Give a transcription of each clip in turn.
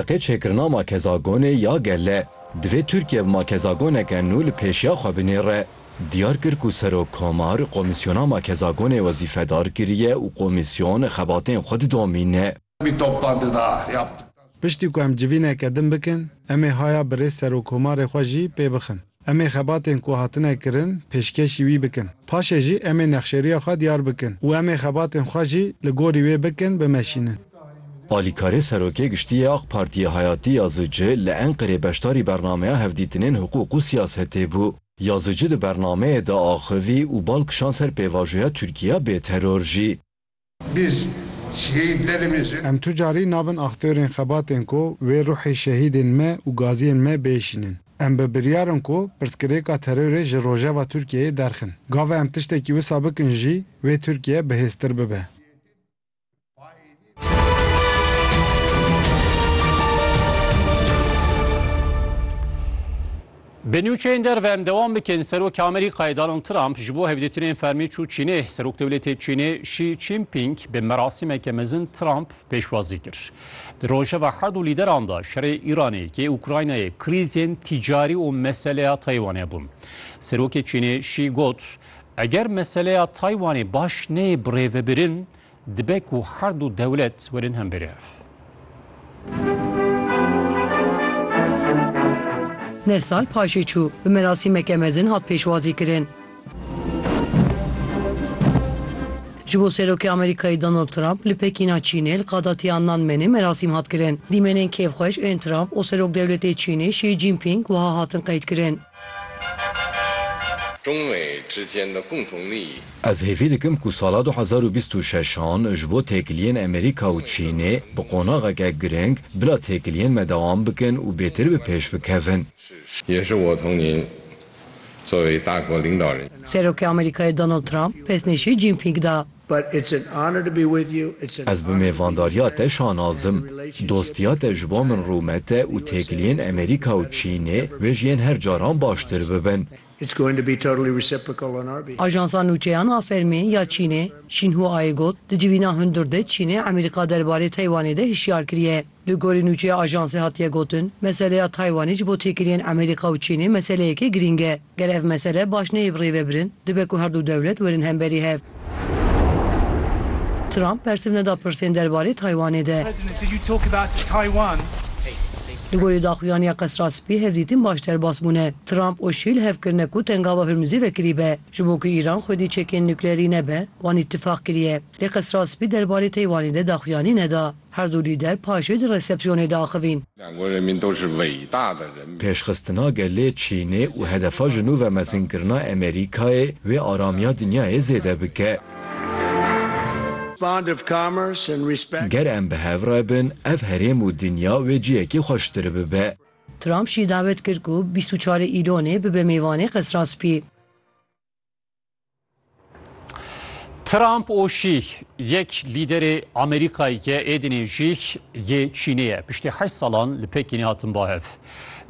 Qe çêkirina makezagonê ya gele, divê Tirkiye bi makezagoneke nû li pêşiya xwe binêre. Diyar kir ku Serok Komar komîsyona makezagonê wezîfedar kiriye û komîsyon xebatên xwe didomîne. Piştî ku em civîneke din bikin, em ê haya bi rê Serok Komarê xwe jî pê bixin. Em ê xebatên ku hatine kirin pêşkêşî wî bikin. Paşê jî em ê nexşeriya xwe diyar bikin û em ê xebatên xwe jî li gorî wê bikin bimeşînin. Alîkarê Serokê Giştî yê AK Partiyê Hayatî Yazıcı li Enqerê beşdarî bernameya hevdîtinên hiqûq û siyasetê bû. Yazıcı di bernameyê de axivî û bal kişand ser pêvajoya Tirkiya bê teror jî. Biz şehîd nedibêjin. Em tu carî nabin aktörên xebatên ku wê ruhê şehîdên me û gaziyên me bêşînin. Em bi biryar in ku pirsgirêka terorê ji rojeva Tirkiyeyê derxin. Gava em tiştekî wisa bikin jî wê Tirkiye bihêztir bibe. Bi nûçeyên derve em dewam bikin, Serokê Amerîkayê Donald Trump ji bo hevdîtinên fermî çû Çînê. Serokdewletê Çînê Xi Jinping bi merasîmeke mezin Trump pêşwazî kir. Di rojeva her du lîderan de şerê Îranê yê Ukraynayê, krîzên tîcarî û meseleya Taywanê bûn. Serokê Çînê Xi got, Eger meseleya Taywanê baş neyê birêvebirin, Dibe ku her du dewlet werin hemberî ev. Neh sal paşê çû, bi merasîmeke mezin hat pêşwazîkirin. Ji bo Serokê Amerîkayê Donald Trump li Pekîna Çînê li qada Tiananmenê merasîm hat kirin. Dîmenên kêfxweş ên Trump û Serokdewletê Çînê Xi Jinping wiha hatin qeydkirin. Ez hêvî dikim ku sala du hezar û bîst û şeş an ji bo têkiliyên Amerîka û Çînê bi qonaxeke giring bila têkiliyên me dewam bikin û bêtir bi pêş bikevin. Serokê Amerîkayê Donald Trump pêsnê Xi Jinping da. Ez bi mêvandariya te şanaz im. Dostiya te ji bo min rûmet e û têkiliyên Amerîka û Çînê wê ji yên her caran baştir bibin. Ajansa Nûçeyan a Fermî ya Çînê, Xinhuaê got, Di civîna hundir de Çînê Amerîka derbarê Taywanê de hişyar kiriye. Li gorî nûçeya ajansê hatiye gotin, meseleya Taywanê ji bo têkiliyên Amerîka û Çînê meseleyekê girîng e. Ger ev mesele baş neyê bi rê ve birin, dibe ku her du dewlet werin hemberî hev. Trump bersiv neda pirsên derbarê Taywanê de. Li gorî daxuyaniya Qesra Spî hevdîtin baş derbas bûne. Trump û Şî li hev kirine ku tengava Hurmuzê vekirî be. Ji bo ku Îran xwedî çekên nukleerî nebe, wan îtîfaq kiriye. Lê Qesra Spî derbarê Teywanê de daxuyanî neda. Her du lîder paşê di resepsiyonê de axivîn. Pêşxistina gelê Çînê û hedefa ji nû ve mezinkirina Amerîkayê wê aramiya dinyayê zêde bike. Ger em bi hev re bin, ev herêm û dinya wê cihekî xweştir bibe. Trump jî davet kir ku bîst û çar ê Îlonê bibe mêvanê Qesra Spî. Trump û Şî yek lîderê Amerîkayê ke êdînê jî yê Çînê ye. Piştî heşt salan li Pekînê hatin bahev.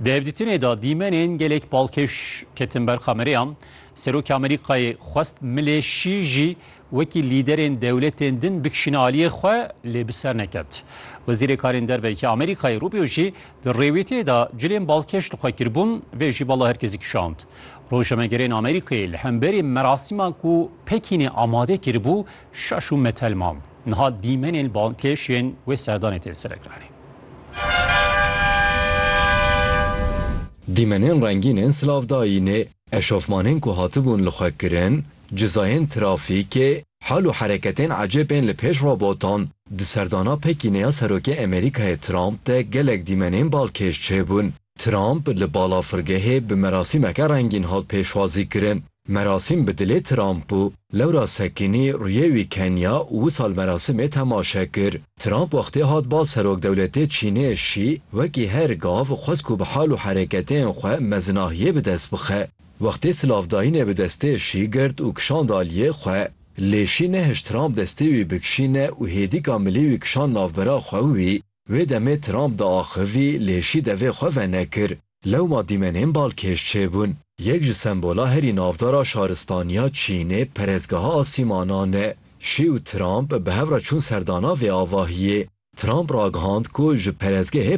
Di hevdîtinê de dîmenên gelek balkêş ketin ber kamereyan. Serokê Amerîkayê xwest milê Şî jî wekî lîderên dewletên din bikişîne aliyê xwe lê bi ser neket. Wezîrê Karên Derveyê Amerîkayê Rubio jî di rêwîtiyê de cilên balkêş li xwe kiribûn vê jî bala herkesî kişand. Rojnamegerên Amerîkayê li hemberî merasîman ku Pekînê amade kiribû şaş û metel man. Niha dîmenên balkêş yên wê serdanê tên serekiranîn. Dîmenên rengînên silavdayînê, eşofmanên ku hatibûn li xwe kirin, cizayên trafîkê, hal û hereketên ecêb ên li pêş robotan, di serdana Pekînê ya Serokê Amerîkayê Trump de gelek dîmenên balkêş çêbûn. Trump li balafirgehê bi merasîmeke rengîn hat pêşwazîkirin. Merasîm bi dilê Trump bû. Lewra Sekînî rûyê wî keniya û wisa li merasîmê temaşe kir. Trump wextê hat bal serokdewletê Çînê Şî wekî her gav xwest ku bi hal û hereketên xwe mezinahiyê bi dest bixe. Wextê silavdayînê bi destê Şî girt û kişand aliyê xwe. Lê Şî nehişt Trump destê wî bikişîne û hêdîka milê wî kişand navbera xwe û wî Vê demê Trump diaxivî lê şî devê xwe venekir. Lewma dîmenên balkêş çêbûn. Yek ji sembola herî navdar a şaristaniya Çînê perestgeha asîmanan e. Şî û Trump bi hev re çûn serdana vê avahiyê. Trump ragihand ku ji perestgehê